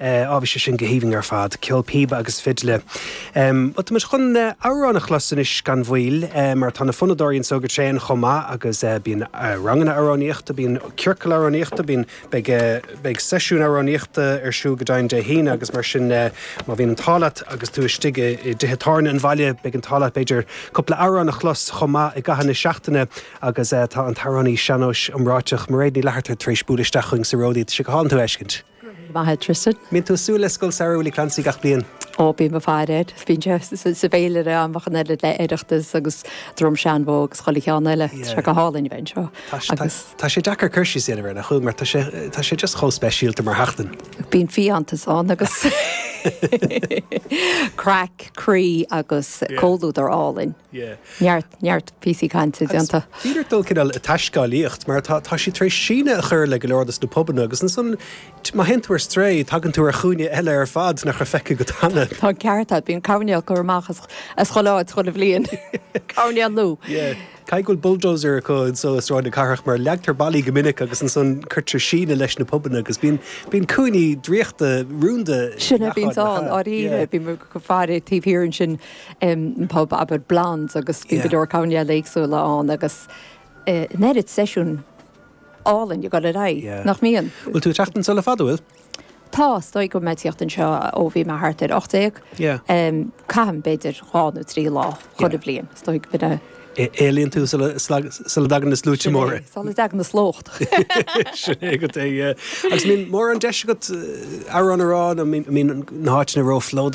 Eh, ó bhí sé sin go haoibhinn ar fad. Ceol píoba agus fidle. Em, bhuel, tá muid chun, eh, amhrán a chlos anois gan mhoill, eh, mar tá na fonnadóirí anseo go tréan chomh maith agus, eh, bíonn, eh, ranganna amhránaíochta, bíonn ciorcail amhránaíochta, bíonn, beidh, eh, beidh seisiúin amhránaíochta ar siúl go deimhin Dé hAoine agus mar sin, eh, má bhíonn an t-ádh leat agus tú istigh i, i dtithe tábhairne an bhaile, beidh an t-ádh leat b'fhéidir cúpla amhrán a chlos chomh maith i gcaitheamh na seachtaine agus, eh, tá an t-amhránaí sean-nóis iomráiteach Mairéad Ní Fhlatharta tar éis bualadh isteach chugainn sa Rollaí, tá sé go hálainn tú a fheiscint. Go raibh maith agat Tristan. Mbíonn tú ag súil le Scoil Samhraidh Willie Clancy gach bliain? Ó, bíonn le fada. Bíonn sé sa bhféilire amach in éindí le Oireachtas agus Drom Seanbhó agus chuile cheann eile. Tá sé go hálainn a bheith anseo. Agus. Tá sé deacair cur síos a dhéanamh air, an dtuigeann tú, mar tá sé, tá sé just chomh speisialta mar sheachtain. Bíonn fiántas ann agus craic, croí agus comhluadar álainn. Neart, neart píosaí cainte déanta. Agus bhí neart dul cineál ag taiscéalaíocht, mar tá, tá siad tar éis síneadh a chur le go leor dos na pubanna, agus ansan, má théann tú ar strae, tagann tú ar chúinne eile ar fad nach raibh feicthe agat cheana. Tá an ceart agat, bíonn coirnéil á gcur amach as chuile áit chuile bhliain, coirnéal nua. Yeah. Caithfidh go bhfuil bulldozer acu anso i Sráid na Cathrach, mar leagtar ballaí go minic agus ansan cuirtear síneadh leis na pubanna agus bíonn, bíonn cúinní draíochta, rúnda i ngach áit le haghaidh, yeah. Sin é, bíonn ann, ndáiríre, bíonn muid go far taobh thiar ansin. bpub ab fhearr Blondes agus bíonn go leor coirnéil éagsúla ann agus an oiread seisiún álainn ag goil ar aghaidh, nach mbíonn? Bhfuil tú ag teacht anseo le fada, bhfuil? Tá, is dóigh go bhfuil mé ag tíocht anseo ó bhí mé thart ar ocht déag. Caithim b'fhéidir dhá nó trí lá chuile bhliain, is dóigh go mbeidh mé. Éalaíonn tú sula dtagann na sluaite móra. Sula dtagann na slócht. Sin é agat é, yeah. Agus an mbíonn mórán deis agat amhrán a rá, nó an mbíonn na háiteanna róphlódaithe.